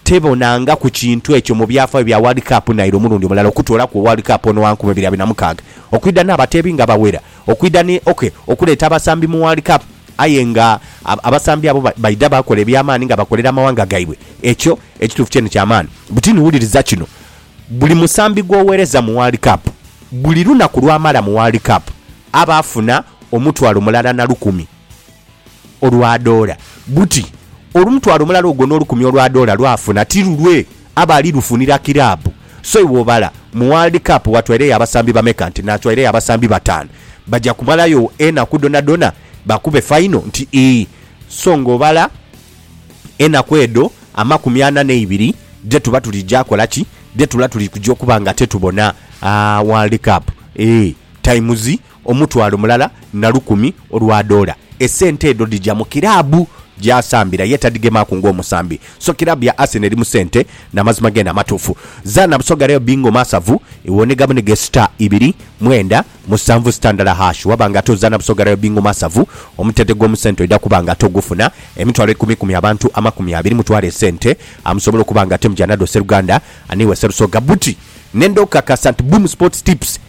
Tebonangaku kintu ekyo mu byafaayo bya World Cup naire omulundi omulala okutoolaku World Cup ono wa nkumi ibiri abiri na mukaaga okwidha n'abateebi nga bawera okwidha ni ok okuleeta abasambi mu World Cup aye nga abasambi abo baidha baakola eby'amaani nga bakolera amawanga gaibwe ekyo ekituufu kyene kya maani butini wuliriza kino buli musambi gw'owereza mu World Cup buli lunaku lw'amala mu World Cup aba afuna omutwalo mulala na lukumi. olwa doola, buti olumutwalo mulala ogwo n'olukumi olwa doola lw'afuna ti lulwe, aba ali lufunira kiraabu. So iwe obala, mu World Cup watwaireyo abasambi bameka? Nti natwaireyo abasambi bataanu. Baja kumalayo enaku dhonadhona bakube faino? Nti ii. So ng'obala enaku edho amakumi ana n'eibiri dhe tuba tuli ja kola ki? Dhe tula tuli kuja okuba nga te tubona World Cup? Ee, times. Omutwalo mulala na lukumi olwa doola. Esente edho dhija mu kiraabu gy'asambira ye tadhigemaaku ng'omusambi. So kiraabu ya Arsenal eri mu sente na mazima geene amatuufu. Zaana Busoga Real Bingo Masavu iwonhegamu ni gesita ibiri, mwenda, musanvu sita ndala hash. Waba nga ate ozaana Busoga Real Bingo Masavu, omutete gw'omu sente oidha kuba nga ate ogufuna. Emitwalo ikumi ikumi abantu amakumi abiri mutwale esente amusobola okuba nga ate muja nadho sseruganda. Ani iwe Sserusoga Buti. Nenda okukakasa nti Boom Sports Tips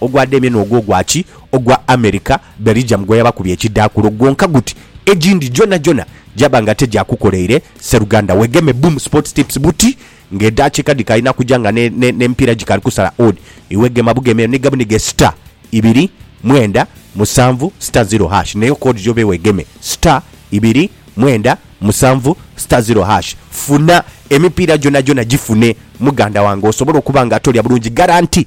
Ogwa Damien ogwo gwa ki? Ogwa America, Belgium gwe yabakubya ekidhaakulo gwonka guti, Egindi gyonagyona gyaba nga tegyakukoleire, sseruganda wegeme Boom Sports Tips buti ng'edaakiika dhikaali na kuja nga n'emipiira gikaali kusala odd, iwe gema bugeme eyo ni gabunige star ibiri mwenda musanvu star zero hash n'eyo code gy'obe wegeme star ibiri mwenda musanvu star zero hash. Funa emipiira gyonagyona gifune muganda wange osobole okuba nga tolya bulungi garanti.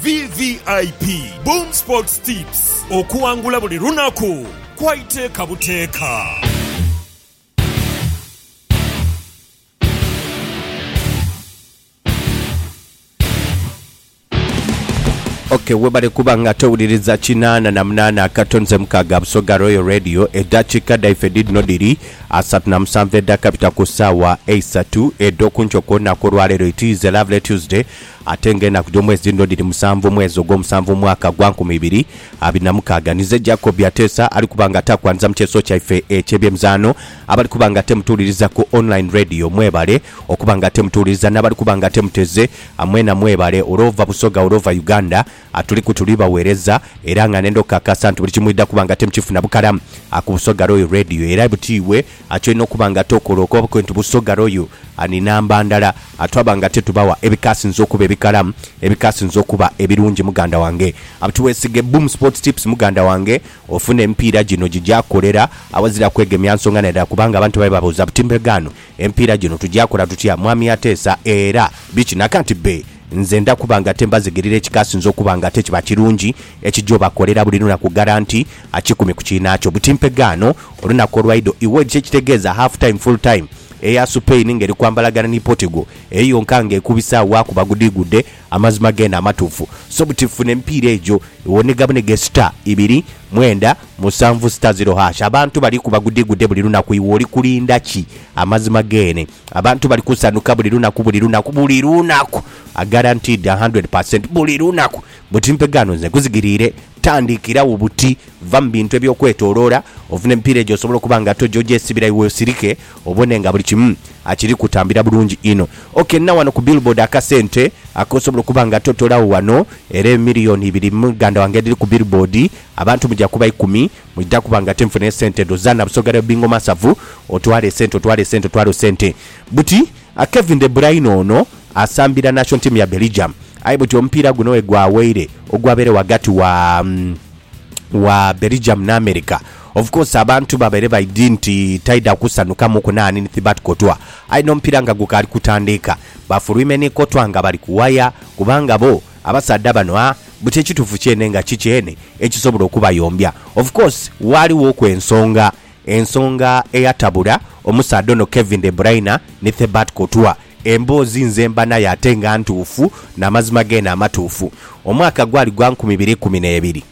VVIP Boom Sports Tips, Okuwangula buli lunaku kwa iteeka buteeka. Ok webale kuba nga towuliriza kinaana na munaana akato nze mukaaga Busoga Royal Radio edhakiika dhaife dhidhino dhiri asatu na musanvu edhakabita ku saawa eisatu edhokunkyo kwonaku olwaleero it is a lovely Tuesday Ate nga enaku dh'omwezi dhino dhiri musanvu, omwezi ogw'omusanvu mu mwaka gwa nkumi ibiri abiri na mukaaga, nize Jacob Ateesa ali kuba nga ataakwaniriza mu kyeso kyaife eky'ebyemizaano. Abali kuba nga ate mutuwuliriza ku online radio mwebale okuba nga ate mutuwuliriza, n'abali kuba nga ate muteze, mwena mwebale olw'ova Busoga, olw'ova Uganda, Atuliku tuli bagheereza era nga nenda okukakasa nti buli kimu mwidha kuba nga temukifuna bukala ku Busoga Royal Radio era buti iwe ati olina okuba nga tokola okobakwe nti Busoga Royal ni namba ndala twaba nga tetubawa ebikasinze okuba ebikala ebikasinze okuba ebirungi muganda wange buti wesige Boom Sports Tips muganda wange ofune emipiira gino gigyakukolera awazira kwegemya nsonga nadala kubanga abantu babe babuuza buti mbega ano Empiira gino tugyakola tutya Mwami Ateesa era biki naka nti bbe nze nda kuba nga tembazigerera ekikasinze okuba nga ate kiba kirungi ekija obakolera buli lunaku garanti akikumi ku kiinaakyo buti mpegaano olunaku olwaido iwedhi kyekitegeeza half time full time eya Supain ngeri kwambalagana ni Portigal eyo yonka nga ekubisa wakuba gudhigudde Amazima geene amatuufu so buti funa emipiira egyo wonega bunege star ibiri mwenda musanvu star zero hash abantu bali kuba gudigude buli lunaku iwe oli kulinda ki amazima geene abantu bali kusanuka buli lunaku buli lunaku buli lunaku a guaranteed a hundred per cent buli lunaku buti mpe gaano nze nkuzigiriire tandikira wo buti va mu bintu ebyokwetoloora ofune emipiira egyo osobole okuba nga toja ogyesibira iwe osirike Obone nga buli kimu kiri kutambira bulungi inho. Ok, nina wano ku billboard akasente akosobola okuba nga totoolagho wano, era emiliyoni ibiri muganda wange edhiri ku billboard, abantu muja kuba ikumi, mwidha kuba nga tinfuna esente edho. Zaana Busoga Real Bingo Masavu, otwale esente, otwale esente, otwale esente. Buti, Kevin De Bruyne ono asambira nation team ya Belgium, aye buti omupiira guno wegwaweire ogwabaire ghagati wa wa Belgium n'America, Of course abantu babaire baidhi nti taidha kusanhukamuku naani ni Thibat Courtois aye n'omupiira nga gukaali kutandiika bafuluime ni Courtois nga bali ku waya kubanga bo abasaadha bano a buti ekituufu kyene nga ki kyene ekisobola okubayombya. Of course waaliwoku ensonga ensonga eyatabula omusaadha ono Kevin De Bruyne ni Thibat Courtois. Emboozi nze mba nayo ate nga ntuufu n'amazima geene amatuufu. Omwaka gwali gwa nkumi ibiri ikumi n'ebiri.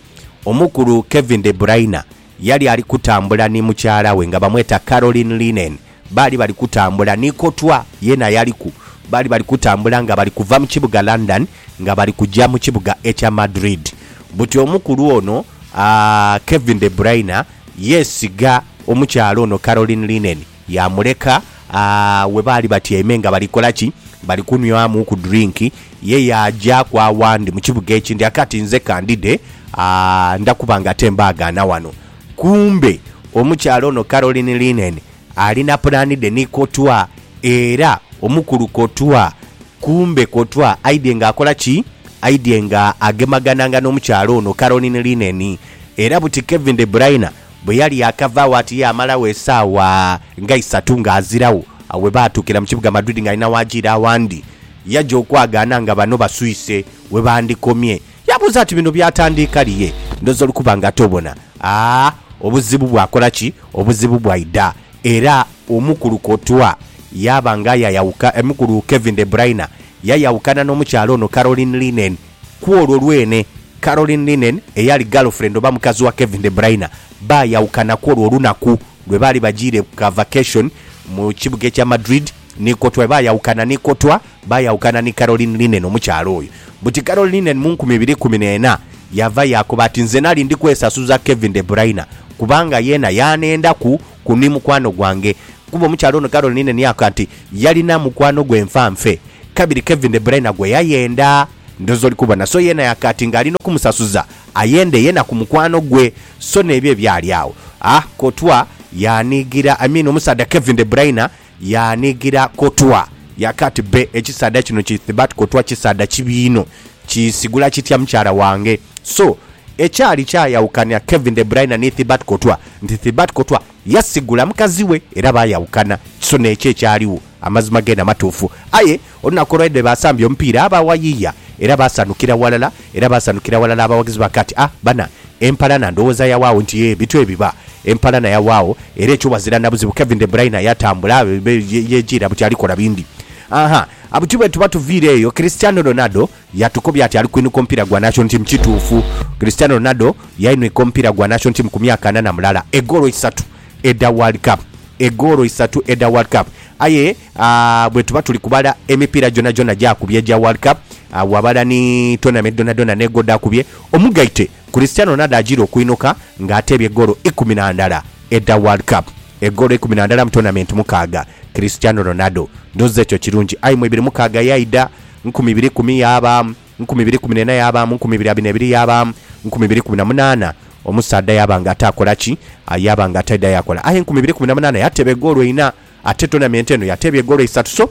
Omukulu Kevin De Bruyne yali ali kutambula ni mukyala we nga bamweta Caroline Linehan. Baali bali kutambula ni kotwa, yeena yaliku. Baali bali kutambula nga bali kuva mu kibuga London nga bali kuja mu kibuga ekya Madrid. Buti omukulu ono, Kevin De Bruyne, yeesiga omukyala ono Caroline Linehan. Yaamuleka we baali batyaime nga bali kola ki? Bali kunhwamu ku drink. Ye yaajaaku awandi mu kibuga ekindi ake ati, Nze ka ndidhe, ndha kuba nga ate mbaagaana wano. Kumbe omukyala ono Carolyn Linnen alina pulaani dhe ni Kotwa. Era omukulu Kotwa, kumbe Kotwa aidhye nga akola ki? Aidhye nga agemagananga n'omukyala ono Carolyn Linnen. Era buti Kevin De Bruyne Bwe yali yaakava agho ati yaamalagho esaawa nga isatu ng'aziragho. Agho bwe baatuukira mu kibuga Madrid ng'alina waaja ire awandi, yaja okwagaana nga bano baswise we bandikomye. Yaabuuza ati, Bino byatandiika lye? Ndhooza oli kuba nga tobona. A Obuzibu bwakola ki? Obuzibu bwaidha era omukulu Courtois yaaba nga yayawuka, omukulu Kevin De Bruyne yayawukana n'omukyala ono Caroline Linnen Ku olwo lwene, Caroline Linnen, eyali girlfriend oba mukazi wa Kevin De Bruyne, baayawukana ku olwo olunaku lwe baali bajiire ku ka vacation mu kibuga ekya Madrid ni Courtois. Baayawukana ni Courtois, baayawukana ni Caroline Linnen, omukyala oyo. Buti Caroline Linnen mu nkumi ibiri ikumi n'ena yaava yaakoba ati, Nze nali ndi kwesasuza Kevin De Bruyne kubanga yeena yaanendaku ku ni mukwano gwange kuba omukyala ono Caroline ni aka nti yalina mukwano gwe nfa nfe kabiri Kevin de Bruyne gwe yayenda ndoza oli kubona so yena yaka ati nga alina okumusasuza ayende yena ku mukwano gwe so nebyo ebyali agho a kotwa yanigira I mean omusaadha Kevin de Bruyne yaanigira kotwa yakati, Bbe, ekisaadha kino kithibat kotwa kisaadha kibi inho. Kiisigula kitya mukyala wange? So, ekyali kyayaukania Kevin De Bruyne ni Thibat Kotwa nti Thibat Kotwa yasigula mukazi we era bayaukana. So n'ekyo ekyaligho. Amazima geene amatuufu. Aye. Olunaku olwaidha baasambye omupiira baawayiiya era baasanukira ghalala era baasanukira ghalala abawagizi ba Kati A bana empalana ndhowooza yawaagho nti yee bityo ebiba. Empalana yawaagho era ekyo ghazira na buzibu Kevin De Bruyne yatambula yejiira buti alikola bindi. Aha buti bwetuba tuviire eyo Cristiano Ronaldo yatukobya ati ali kwinhuka omupiira gwa National Team Kituufu Cristiano Ronaldo yainhwika omupiira gwa National Team ku myaka ana na mulala egoolo isatu edha World Cup egoolo isatu edha World Cup aye A Bwetuba tuli kubala emipiira gyonagyona egyakubye egya World Cup, a Wabala ni tournament dhonadhona ne gwo dhakubye, omugaite Cristiano Ronaldo ajiire okuinuka nga ateebye goolo ikumi na ndala edha World Cup. Egoolo ikumi na ndala mu tournament mukaaga. Cristiano Ronaldo. Ndhoozi ekyo kirungi. Aye mu ibiri mukaaga yaidha, nkumi ibiri ikumi yaabaamu, nkumi ibiri ikumi n'ena yaabaamu, nkumi ibiri abiri n'ebiri yaabaamu, nkumi ibiri ikumi na munaana, omusaadha yaaba nga ataakola ki? Yaaba nga ataidha yaakola. Aye nkumi ibiri ikumi na munaana yateeba egoolo inha Ate tournament eno yateebya egoolo isatu so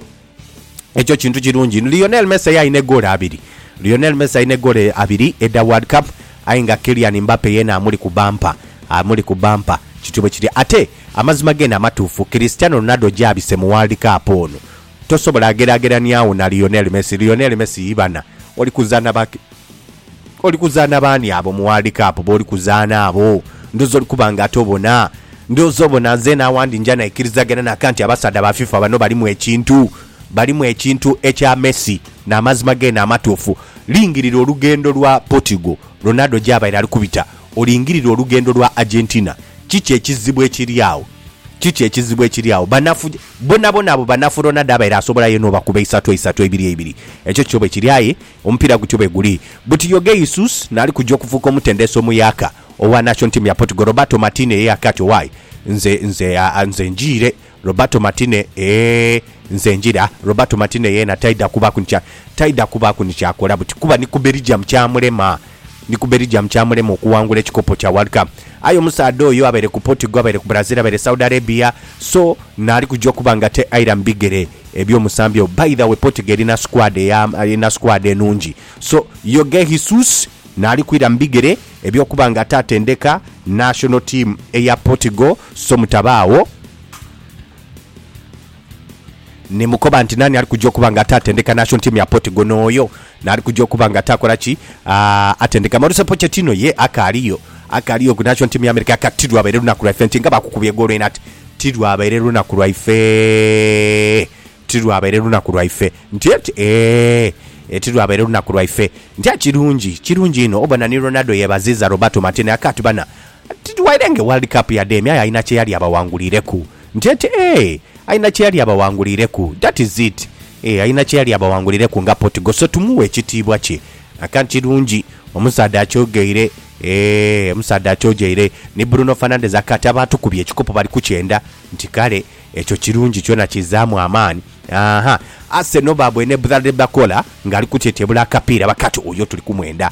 ekyo kintu kirungi inho. Lionel Messi ye alina egoolo abiri. Lionel Messi alina egoolo abiri edha World Cup aye nga Kylian Mbappe yeena amuli ku bampa, amuli ku bampa. Kityo bwe kiri. Ate amazima geene amatuufu, Cristiano Ronaldo gy'abise mu World Cup ono tosobola geraageraniagho na Lionel Messi. Lionel Messi ibana oli kuzaanha ba. Oli kuzaana baani abo mu World Cup booli kuzaana abo? Ndhooza oli kuba nga ate obona. Ndhooza obona nzeena awandi nja naikirizagana na ka nti abasaadha ba FIFA bano balimu ekintu. Balimu ekintu ekya Messi n'amazima geene amatuufu. Lingirira olugendo lwa Portugal, Ronaldo gy'abaire ali kubita. Olingirire olugendo lwa Argentina. Kiki ekizibu ekiri agho? Kiki ekizibu ekiri agho? Banafu bonabona abo banafu Ronaldo abaire asobola yeena obakuba isatu eisatu, eibiri eibiri. Ekyo kyo bwe kiri aye Omupiira gutyo bweguli buti Jorge Jesus naali kuja okufuuka omutendesi omuyaaka owa nation team ya Portugal Roberto Martine ye yake ati Owaye nze nze aa nze njiire Roberto Martine eeh nze njiire ah Roberto Martine yeena taidha kubaaku ni kya taidha kubaaku ni kyakola buti kuba ni ku Belgium kyamulema. Ndi ku Belgium kyamulema okuwangula ekikopo kya World Cup. Aye omusaadha oyo abaire ku Portugal, abaire ku Brazil, abaire Saudi Arabia so naali kuja okuba nga taira mu bigere eby'omusambi oyo. By the way Portugal erina squad eya, erina squad enhungi so Jorge Jesus naali kwira mu bigere eby'okuba nga ate atendeka national team eya Portugal so mutabaagho. Ni mukoba nti, Naani ali kuja okuba nga ataatendeka nation team ya Portugal? N'oyo n'ali kuja okuba nga ataakola ki? Aatendeka. Mauricio Pochettino ye akaaliyo. Akaaliyo ku nation team ya America. Kati ti lwabaire lunaku lwaife nti nga baakukubya egoolo eno ati, Ti lwabaire lunaku lwaife. Ti lwabaire lunaku lwaife. Nti eti, Eeh, ti lwabaire lunaku lwaife. Nti, Aah, kirungi, kirungi inho. Obona ni Ronaldo yeebaziiza Roberto Martinez. Aka ati, Bana, Tidwaire nge World Cup ya Dame aye alina kyeyali abawangulireku. JT, Eeh alina kyeyali abawangulireku. That is it. Eeh alina kyeyali abawangulireku nga Portugal so tumughe ekitiibwa kye. Akantu kirungi omusaadha akyogeire. Eeh omusaadha akyogeire. Ni Bruno Fernandes akati abaatukubye ekikopo bali kukyenda nti kale ekyo kirungi kyona kizzaamu amaani. Aaha Arsenal baabwene Bradley Bakola ng'ali kutyetyebula akapiira bakati oyo tuli kumwenda.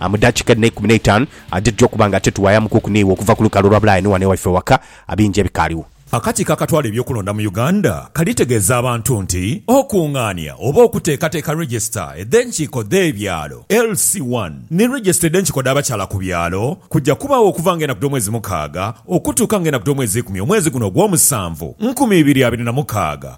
A Mu daakika edho n'eikumi n'eitaanu a dhitugya okuba nga tetuwayamukuuku n'iwe okuva ku lukalu olwa bulaaya ni wano ewaife ewaka, a bingi ebikaaliwo. Akakiiko akatwala eby'okulonda mu Uganda kalitegeeza abantu nti okungaania oba okuteekateeka Register edh'enkiiko dh'ebyalo, LC one, ni Register edh'enkiiko dh'abakyala ku byalo kujja kubaagho okuva nga enaku dh'omwezi mukaaga okutuuka nga enaku dh'omwezi ikumi omwezi guno ogw'omusanvu, nkumi ibiri abiri na mukaaga.